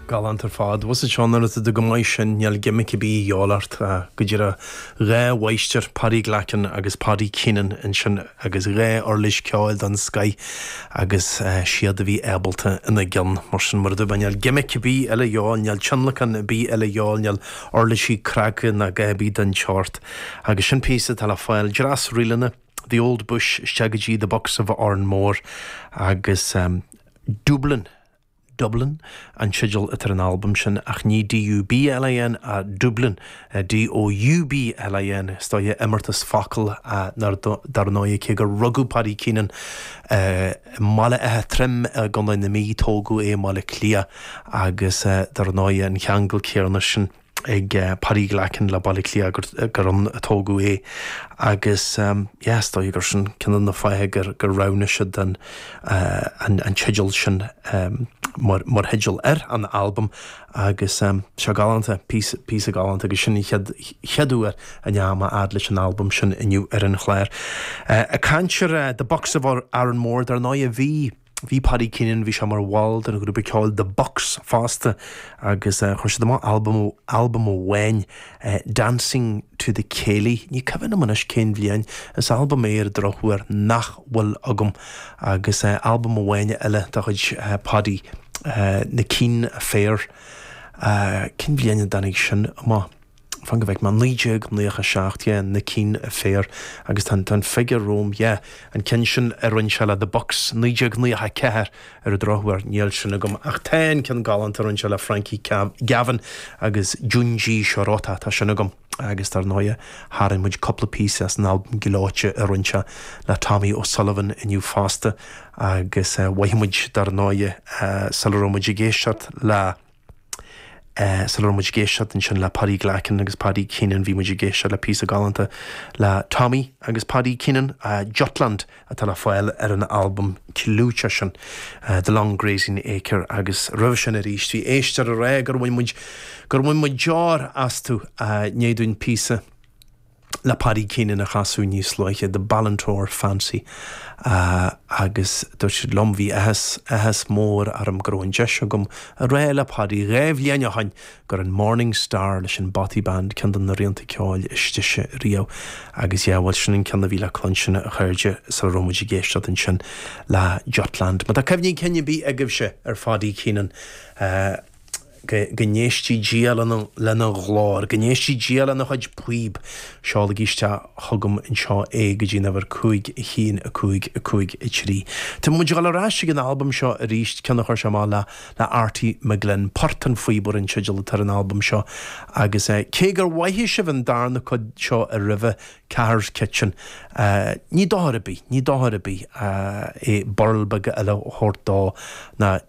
Galánta ar fad. Bhus id cheann arat do go maith sin, níl gimic ar bith a dhíobháil ach go díreach dhá mháistir, Paddy Glackin agus Paddy Keenan ansin agus dhá uirlis ceoil den scoth agus iad a bheith ábalta ina gcionn. Mar sin mar a dúirt mé, níl gimic ar bith eile a dhíobháil, níl tionlacan ar bith eile a dhíobháil, níl uirlisí cnagtha ná a dhath ar bith den tseort. Agus sin píosa atá le fáil. Dreas ríleanna. the old bush isteach go dtí the Bucks of Oranmore agus Doublin', Doublin' an teideal atá ar an albam sin ach ní D-u-b-l-i-n ach Doublin', D-o-u-b-l-i-n is dóigh, imeartas focal dar ndóigh cé gur rugadh Paddy Keenan i mBaile Átha Troim i gContae na Mí tógadh é i mBaile Átha Cliath agus dar ndóigh an cheangal céanna sin. ag Paddy Glackin le Baile Átha Cliath gur gur ann a tógadh é agus yeah is dóigh gur sin ceann de na fáithe gur gur roghnaigh siad an an an teideal sin mar mar theideal ar an albam agus seo galánta píosa píosa galánta agus sin an chéad chéad uair a ndeachaigh mé a fhad leis an albam sin inniu ar an chlár. Ag caint ar The Bucks of Oranmore dar ndóigh a bhí Bhí Paddy Keenan, bhí sé mar bhall den ghrúpa ceoil The Bucks fosta agus chuir siad amach albam, albam amháin, Dancing to the Céilí, ní cuimhin liom anois cén bhliain, is albam é ar an drochuair nach bhfuil agam, agus albam amháin eile de chuid Paddy, Na Keen Affair, cén bhliain a dtáinig sin amach? fan go bhfeic mé, 1997 yeah, Na Keen Affair agus tá an figiúr romham yeah, an ceann sin a rinne sé le The Bucks, 1994 ar an drochuair níl sin agam ach tá an ceann galánta a rinne sé le Frankie Gavin agus Junji Shirota, tá sin agam. Agus dar ndóighe, tharraing muid cúpla píosa as an albam gleoite a rinne sé le Tommy O'Sullivan inniu fosta agus mhothaigh muid dar ndóighe sula raibh muid ag éisteacht le Sula raibh muid ag éisteacht ansin le Paddy Glackin agus Paddy Keenan, bhí muid ag éisteacht le píosa galánta le Tommy agus Paddy Keenan, 'Jutland', atá le fáil ar an albam clúiteach sin, 'The Long Grazing Acre'. Agus roimhe sin arís, bhí éisteoir ag rá gur bhain muid deoir astu. I ndiaidh dúinn píosa. le Paddy Keenan a chasadh níos luaithe, The Ballintore Fancy, agus dúirt siad liom, bhí áthas, áthas mór orm go raibh an deis agam a rá le Paddy dhá bhliain ó shoin gurb é an Morning Star leis an Bothy Band, ceann de na rianta ceoil is deise riamh agus yeah, bhuel sin an ceann a bhí le cluinstin a chairde sula raibh muid ag éisteacht ansin le Jutland. Má tá cuimhní cinn ar bith agaibhse ar Paddy Keenan, Go n-éistidh Dia lena ghlór. Go n-éistidh Dia lena chuid píob. Seolaigí isteach chugam anseo é go dtí an uimhir 5, 1, 5, 5, 3. Tá muid ag dul ar ais ag an albam seo arís, ceann a chuir sé amach le Artie McGlynn. Port an Phíobaire an teideal atá ar an albam seo agus cé gur mhoithigh sibh an darna cuid seo a roimhe, Cahir's Kitchen, ní dochar ar bith, ní dochar ar bith é birl beag eile a thabhairt dó ná